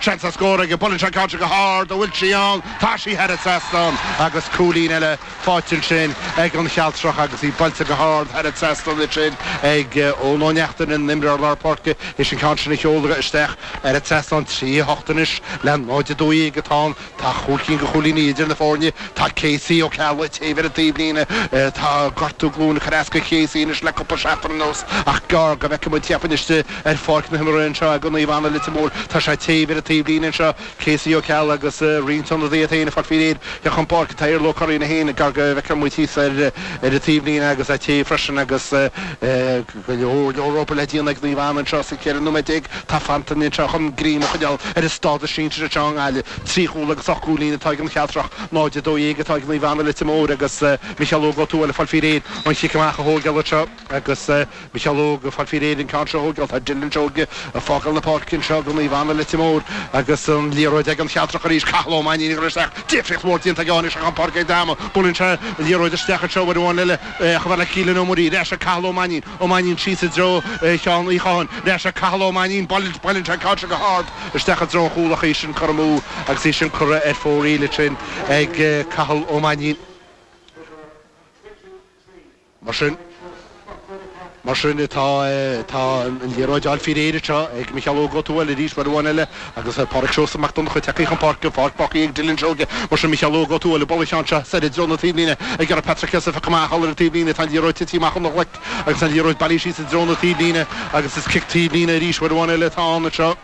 Seans ar scór aige, buaileann sé an ceann seo go hard, an bhfuil sí ann, tá sí thar an trasnán agus cúilín eile faighte ansin ag an Chealtrach agus í buailte go hard thar an trasnán ansin ag Eoin Ó Neachtain an t-imreoir lár páirce. Is an ceann sin á sheoladh isteach thar an trasnán trí a hocht anois le náid a dó dhéag atá ann. Tá cúig cinn de chúilíní idir na foirne. Tá Casey Ó Ceallaigh ag téamh ar an taobhlíne. Tá gortú glúine ag cur as do Chasey anois le cúpla seachtain anuas ach gearr go bhfeicfidh muid cheapfainn istigh ar pháirc na himeartha anseo do Naomh Anna Leitir Móir. Tá sé ag téamh ar an taobhlíne anseo, Casey Ó Ceallaigh, agus roinnt ionadaithe tá siad ag fáil faoi réir le theacht chun páirce. Tá Iarla Ó Curraoin é féin gearr go bhfeicfidh muid thíos ar an taobhlíne agus é ag téamh freisin agus Go leor leor obair le déanamh ag Naomh Anna anseo sa 14 nóiméad atá fanta anseo chun greim a choinneáil ar a stádas sinsir anseo i nGaillimh. Trí chúl agus ocht gcúilín atá ag an Chealtrach, 0-12 atá ag Naomh Anna, Leitir Móir agus Micheál Óg Ó Tuathail ag fáil faoi réir an chic amach a thógáil anseo agus Micheál Óg ag fáil faoi réir an ceann seo a thógáil. Tá Dylan Seoige ag fágáil na páirce anseo do Naomh Anna, Leitir Móir agus an liathróid ag an Chealtrach arís. Cathal Ó Mainnín ag rith isteach, difríocht mhór déanta aige ó tháinig sé chun páirce ag Damo. Buaileann sé an liathróid isteach anseo uair amháin eile. Chomh fada le Keelan Ó Muirí, ar ais ag Cathal Ó Mainín, Ó Mainín síos i dtreo Sheáin Uí Chatháin. Ar ais ag Cathal Ó Mainín, buaileann sé an ceann sin go hard isteach i dtreo an chúil ach é sin curtha amú agus é sin curtha ar fóraoil ansin ag Cathal Ó Mainín mar sin. Mar sin tá, tá an liathróid á fáil faoi réir anseo ag Micheál Óg Ó Tuathail arís uair amháin eile agus Pádraig Seosamh Mac Donncha tagtha chun páirce, an pháirc fágtha ag Dylan Seoige. Mar sin, Micheál Óg Ó Tuathail buaileann sé an ceann seo, soir i dtreo na taobhlíne ag iarraidh Patrick S a phiocadh amach, thall ar an taobhlíne, tá an liathróid tite amach óna ghlaic agus tá an liathróid bailithe síos i dtreo na taobhlíne agus is cic taobhlíne arís uair amháin eile atá ann anseo.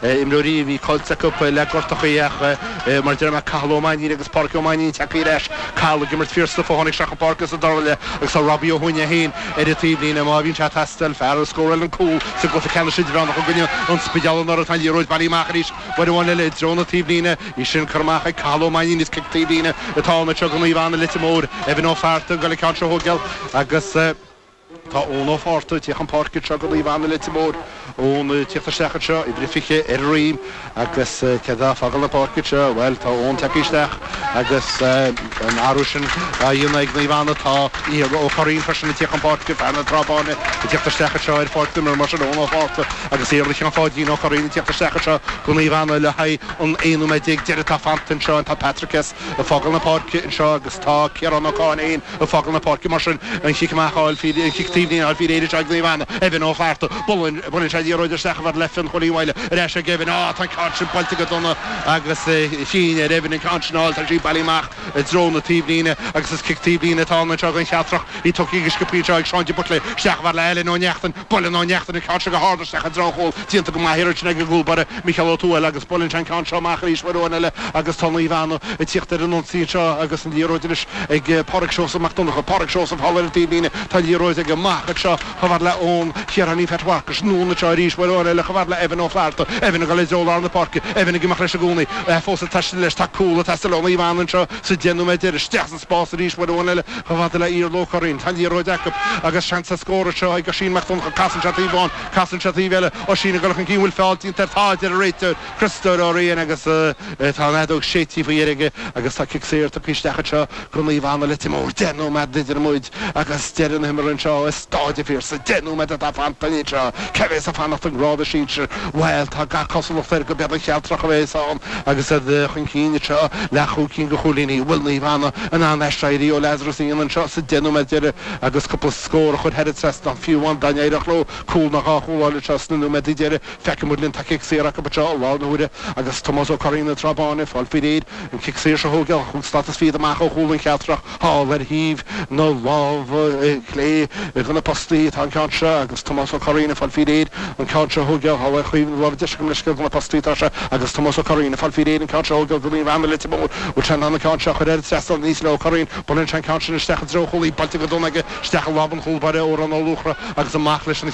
imreoirí a bhí caillte acu le gortuithe ach mar a deir mé, Cathal Ó Mainnín agus Pádraig Ó Mainnín ag teacht ar ais, Cathal ag imirt fíor stuif ó tháinig sé chun páirce sa dara leath agus tá Robbie Ó hUaithne féin ar an taobhlíne má bhíonn sé ag teastáil, fear a scóráil an cúl sa gcluiche ceannais idirmheánach i gcoinne an Spidéil anuraidh. Tá an liathróid bailithe amach arís, uair amháin eile i dtreo na taobhlíne, í sin curtha amach ag Cathal Ó Mainnín, is cic taobhlíne atá ann, anseo do Naomh Anna, Leitir Móir, Evan Ó Flatharta ag goil an ceann seo a thógáil agus. Tá Eoin Ó Fátharta ag tíocht chun páirce anseo do Naomh Anna Leitir Móir, Eoin ag tíocht isteach anseo, uimhir a 20 ar a dhroim agus cé atá ag fágáil na páirce anseo, bhuel tá Eoin tagtha isteach agus an t-athrú sin á dhéanamh ag Naomh Anna. Tá Iarla Ó Curraoin freisin ag tíocht chun páirce, fear na Trá Báine ag tíocht isteach anseo ar pháirc na himeartha, mar sin Eoin Ó Fátharta agus Iarla Sheáin Pháidín Ó Curraoin ag tíocht isteach anseo do Naomh Anna le haghaidh an 11 nóiméad deiridh atá fanta anseo, tá Patrick S ag fágáil na páirce anseo agus tá Ciarán Ó Cáilléain, Ag fágáil na páirce, mar sin, an chic amach, an chic taobhlíne á fháil faoi réir anseo ag Naomh Anna, Evan Ó Flatharta. Buaileann sé an liathróid isteach chomh fada le Fionn Chóilín Mhaidhle. Ar ais ag Evan. Ááá, tá an ceann sin buailte go dona agus chinn ar Evan an ceann sin a fháil. Tá sí bailithe amach i dtreo na taobhlíne agus is cic taobhlíne atá ann anseo don Chealtrach. Í tógtha go sciobtha anseo ag Seán de Buitléir. Isteach chomh fada le Alan Ó Neachtain. Buaileann Ó Neachtain an ceann seo go hard isteach i dtreo an chúil, díonta go maith an iarraidh sin ag an gcúl baire, Micheál Ó Tuathail, agus buaileann sé an ceann seo amach arís uair amháin eile agus tá Naomh Anna ag tíocht ar an ionsaí anseo agus an liathróid anois ag Pádraig Seosamh Mac Donncha. Pádraig Seosamh thall ar an taobhlíne, tá an liathróid aige amach anseo, chomh fada le Eoin Chiaráinín Pheait Mharcais anonn anseo arís uair amháin eile, chomh fada le Evan Ó Flatharta, Evan ag dul i dtreo lár na páirce, Evan ag imeacht leis i gcónaí, fós ag taisteal leis, tá cúl ag teastáil ó Naomh Anna anseo sa deich nóiméad deiridh, isteach sa. Spás arís, uair amháin eile, chomh fada le Iarla Ó Curraoin. Tá an liathróid acu agus seans ar scór anseo ag Oisín Mac Donncha, casann sé taobh amháin, casann sé taobh eile, Oisín ag dul chun cinn, bhfuil feall déanta air? Tá, a deir an réiteoir, Criostóir Ó Riain agus tá an fheadóg séidte faoi dheireadh aige agus tá cic saor tugtha isteach anseo go Naomh Anna, Leitir Móir, deich nóiméad idir muid Agus deireadh na himeartha anseo i Stáid an Phiarsaigh. Deich nóiméad atá fanta ann anseo. Cé a bheas ag fanacht i ngrád na sinsir? Bhuel, tá gach cosúlacht air gurb iad an Chealtrach a bheas ann agus iad chun cinn anseo, le chúig cinn de chúilíní. An bhfuil Naomh Anna in ann aiséirí ó Lazarus a dhéanamh anseo sa deich nóiméad deireadh agus cúpla scór a chur thar an trasnán? Fiú amháin dá n-éireodh leo cúl ná dhá chúl a fháil anseo sna nóiméadaí deireadh, feicfidh muid linn, tá cic saor acu anseo i láthair na huaire agus Tomás Ó Curraoin, an Trá Báin, ag fáil faoi réir an cic saor seo a thógáil, cúig slata fichead amach ó chúl an Chealtrach. Thall ar thaobh na láimhe clé de na postaí atá an ceann seo agus Tomás Ó Curraoin ag fáil faoi réir an ceann seo a thógáil, thall ar thaobh na láimhe deise gabh mo leithscéal de na postaí atá sé agus Tomás Ó Curraoin ag fáil faoi réir an ceann seo a thógáil go Naomh Anna Leitir Móir, bhfuil sé in ann an ceann seo a chur thar an trasnán? Aníos le Ó Curraoin. Buaileann sé an ceann sin isteach i dtreo an chúil, í buailte go dona aige isteach i lámh an chúlbáire Órán Ó Luachra agus amach leis an